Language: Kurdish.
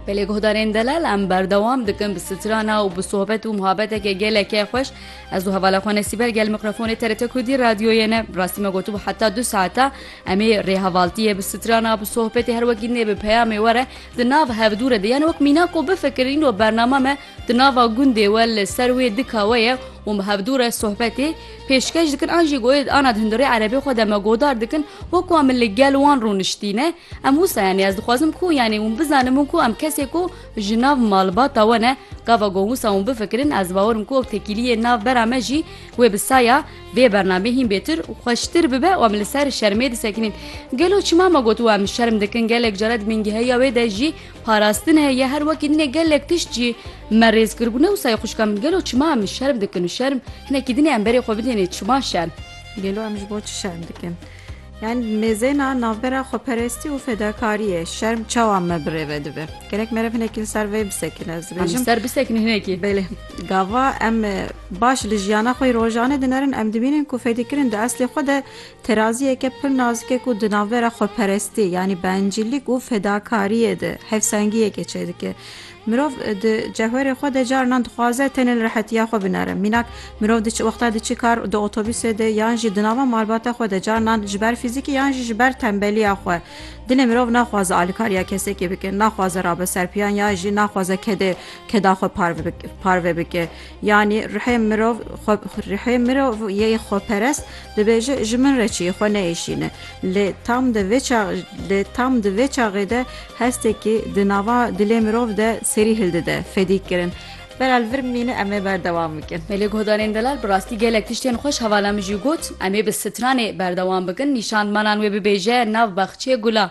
Belê guhdarên delal em berdewam dikin bi strana û bi sohbet û muhabeteke gelekê xweş ez û hevala xwe nesîber gel mikrafonê TRT Kurdî radyoyê ne rastî me gotibû heta du saeta em ê rêhevaltiyê bi strana bi sohbetê her wekî nê bi peyamê were di nav hevdû re de yani wek mîna ku bifikirîn û bernama me di nava gundê we li ser wê dika we ye û me hevdû re sohbetê pêşkeş dikin an jî goyê ana di hundirê erebê xwe de me godar dikin wek wa min li gel wan rûniştîne Em wisa yanî ez dixwazim ku yanî hûn bizanin min ku em kesê ku ji nav malbata we ne gava got wisa hûn bifikirin ez bawerim ku ew tekîliyê nav bera me jî wê bi saya vê bernamê hîn bêtir û xweştir bibe û em li ser şermê disekinîn gelo çima me got û em şerm dikin gelek care di mîngiheya wê de jî parastin heye her wekî dinê gelek tişt jî me rêz kir gune wisa xuşka min gelo çima em şerm dikin û şerm hinekî dinê em berê xwe bidênê çima şerm gelo em ji bo çi şerm dikin Yan mêzêna navbera xweperestî û fedakariyê şerm çawa me bi rê ve dibe? Gerek meriv hinekî li ser vê bisekine ez dibêjim. Em ser bisekin hinekî. Belê gava em baş li jiyana xwe rojanê dinerin em dibînin ku fedîkirin di eslê xwe de teraziyeke pir nazikê ku di navbera xweperestî yanî bencîlîk û fedakariyê de hevsengiyekê çêdike. Mirov di cewherê xwe de carinan dixwaze tenê li rehetiya xwe binere. Mînak mirov di wexta diçi kar di otobusê de yan jî di nava malbata xwe de carinan ji ber fîzîkî yan jî ji ber tembeliya xwe dilê mirov naxwaze alikariya kesekî bike, naxwaze rabe ser piyan yan jî naxwaze kedê keda xwe parve bike. Yanî rihê mirov rihê mirov yê xweperest dibêje ji min re çiyê xwe neyêşîne. Lê tam di vê çax lê tam di vê çaxê de hestekî di nava dilê mirov de serî hildide, fedîkirin. Delal vir mîne em ê berdewam bikin. Belê guhdarên Delal bi rastî gelek tiştên xweş hevala min jî got, em ê bi stranê berdewam bikin, nîşan manan wê bibêje nav baxçeyê gulan.